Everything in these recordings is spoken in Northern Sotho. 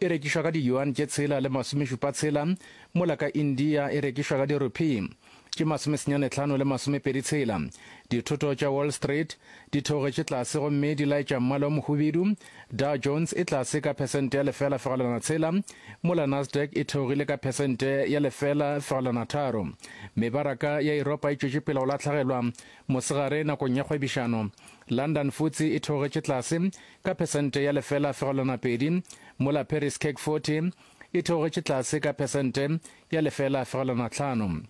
e rekišwa ka di-yuan tše tshela le masomešupa tshela, mola ka India e rekišwa ka di-rupee tše masomesenyane tlhano le masomepedi tshela. Dithoto tša Wall Street di theogetše tlase gomme di laetša mmala o mohubedu, Dow Jones e tlase ka phesente ya lefela fegelwana tshela, mola Nasdaq e theogile ka phesente ya lefela fegelwana tharo. Mebaraka ya Europa e tšwetše pele go latlhegelwa mosegare nakong ya kgwebišano. London Futse e theogetše tlase ka phesente ya lefela fegelwana pedi, mola Paris CAC 40 e theogetše tlase ka phesente ya lefela fegelwana tlhano.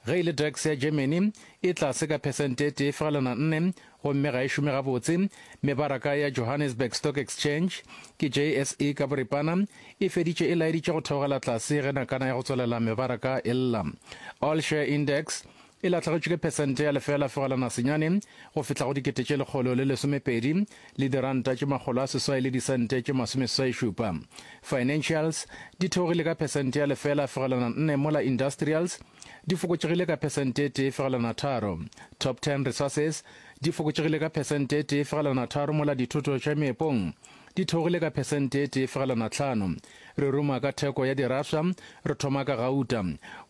Ge e le DAX ya Germany e tlase ka phesente e tee fegelwana nne gomme ga e šome gabotse. Mebaraka ya Johannesburg Stock Exchange, ke JSE ka boripana, e feditše e laeditše go theogela tlase ge nakana ya go tswelela mebaraka e lla. All Share Index e lahlegetšwe ke phesente ya lefeela fegelwana senyane, go fihla go dikete tše lekgolo le lesomepedi, le diranta tše makgolo a seswai le disente tše masomeswai-šupa. Financials, di theogile ka phesente ya lefeela fegelwana nne mola Industrials, di fokotšegile ka phesente e tee fegelwana tharo. Top Ten Resources, di fokotšegile ka phesente e tee fegelwana tharo mola Dithoto tša Meepong, di theogile ka phesente e tee fegelwana tlhano. Re ruma ka theko ya dirafša, re thoma ka gauta.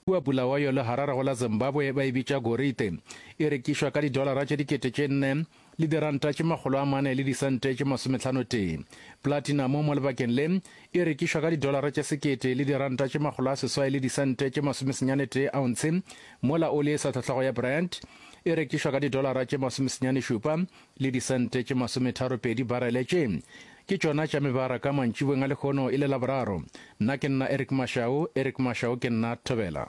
Kua Bulawayo le Hararego la Zimbabwe ba e bitša gorite. E rekišwa ka didolara tše dikete tše nne le diranta tše makgolo a mane le disente tše masometlhano tee. Platinamo mo lebakeng le e rekišwa ka didolara tše sekete le diranta tše makgolo a seswai le disente tše masomesenyane tee aontshe, mola oli e sa tlhohlago ya Brent e rekišwa ka didolara tše masomesenyane šupa le disente tše masometharopedi barele tše ke tšona tša mebaraka mantšibweng a lekgono e le laboraro. Nna ke nna Eric Mashau, Eric Mashau ke nna Thobela.